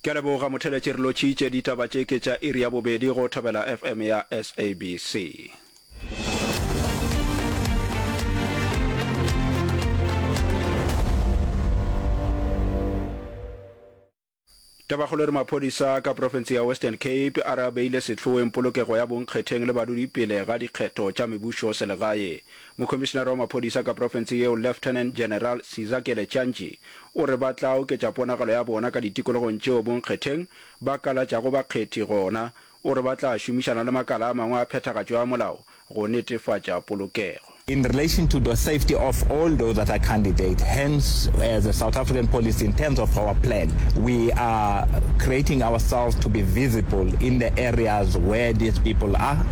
Ke a leboga motheletši re lotšitše ditaba tše ke tša iri ya bobedi go Thobela FM ya SABC. Tabakgolo re maphodisa ka profense ya Western Cape a re a beile sehloeng polokego ya bonkgetheng le badudi pele ga dikgetho tša mebušo selegae. Mokhomišinare wa maphodisa ka profense yeo Lieutenant General Sizakele Chantshi o re ba tla oketša ponagalo ya bona ka ditikologong tšeo bonkgetheng ba kalatšago bakgethi gona. O re ba tla šomišana le makala a mangwe a phethagatšo ya molao go netefatša polokego. In relation to the safety of all those that are candidate, hence as a South African policy in terms of our plan, we are creating ourselves to be visible in the areas where these people are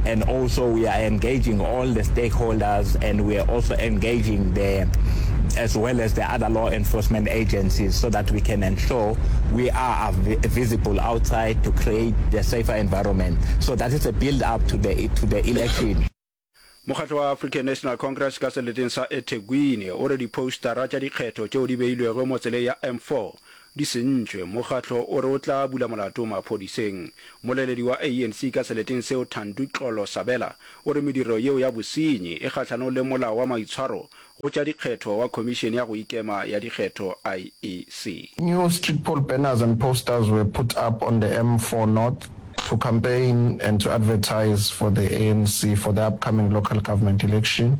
and also we are engaging all the stakeholders and we are also engaging the as well as the other law enforcement agencies so that we can ensure we are visible outside to create the safer environment so that is a build up to the to the election Mokgatlo wa African National Congress ka seleteng sa eThekwini o re diphoustara tša dikgetho tšeo di beilwego mo tseleng ya M4 di sentšwe. Mokgatlo o re o tla bula molato maphodiseng. Moleledi wa ANC ka seleteng seo Thando Xolo Sabela o re mediro yeo ya bosenyi e kgahlanong le molao wa maitshwaro go tša dikgetho wa Khomišene ya go Ikema ya Dikgetho, IEC. New street pole banners and posters were put up on the M4 North to campaign and to advertise for the ANC for the upcoming local government election.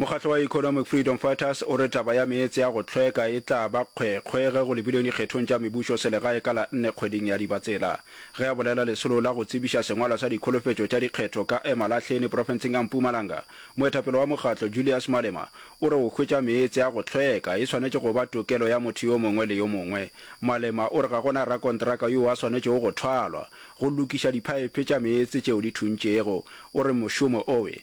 Mokgatlo wa Economic Freedom Fighters o re taba ya meetse ya go hlweka e tla ba kgwekgwe ge go lebilwe dikgethong tša mebušo selegae ka la nne kgweding ya Dibatsela. Ge a bolela lesolo la go tsebiša sengwalwa sa dikholofetšo tša dikgetho ka Emalahleni profenseng ya Mpumalanga, moetapele wa mokgatlo Julius Malema o re o hwetša meetse ya go hlweka e swanetše go ba tokelo ya motho yo mongwe le yo mongwe. Malema o re ga go na rakontraka yoo a swanetšego go thwalwa go lokiša diphaephe tša meetse tšeo di thuntšego. O re mošomo owe.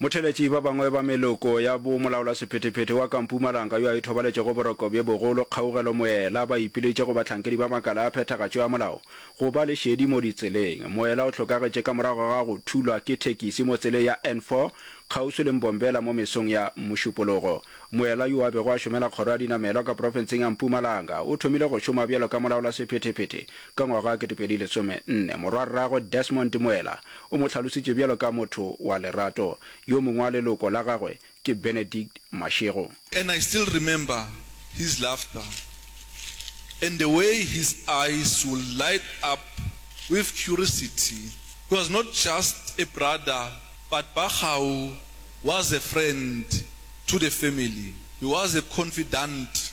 Motheeletši ba bangwe ba meloko ya bo molaolasephetephete wa ka Mpumalanga yo a ithobaletšego boroko bjo bogolo kgaugelo moela ba ipiletše go bahlankedi ba makala a phethagatšo ya molao go ba le šedi mo ditseleng. Moela o hlokagetše ka morago ga go thulwa ke thekisi mo tseleng ya N4 kgauswi le Mbombela mo mesong ya Mošupologo. Moela yo a bego a šomela kgoro ya dinamelwa ka profenseng ya Mpumalanga o thomile go šoma bjalo ka molaolasephetephete ka ngwaga wa 2014. Morwarragwe Desmond Moela O mo hlalositše bjalo ka motho wa lerato. Yo mongwe wa leloko la gagwe ke Benedict Mashego. And I still remember his laughter and the way his eyes would light up with curiosity. He was not just a brother but Bakgau was a friend to the family. He was a confidant.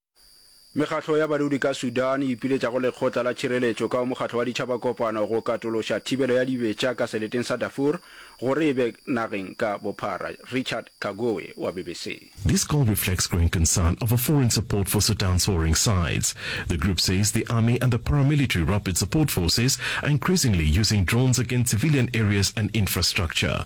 Mekgatlo ya badudi ka Sudan e ipiletša go Lekgotla la Tšhireletšo ka go Mokgatlo wa Ditšhaba Kopano go katološa thibelo ya dibetša ka seleteng sa Darfur gore e be nageng ka bophara. Richard Kagoe wa BBC. This call reflects growing concern over foreign support for Sudan's warring sides. The group says the army and the paramilitary rapid support forces are increasingly using drones against civilian areas and infrastructure.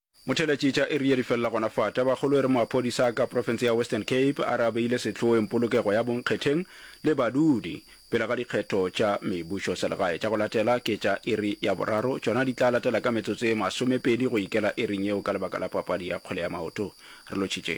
Motheeletšitša Erie di felela gona fa. Tabakgolo e re maphodisa a ka profense ya Western Cape a re a beile sehloeng polokego ya bonkgetheng le badudi pele ga dikgetho tša mebušoselegae tša go latela ke tša iri ya boraro tšona di tla latela ka metsotso e masomepedi go ikela iring yeo ka lebaka la papadi ya kgwele ya maoto. Re lotšhitše.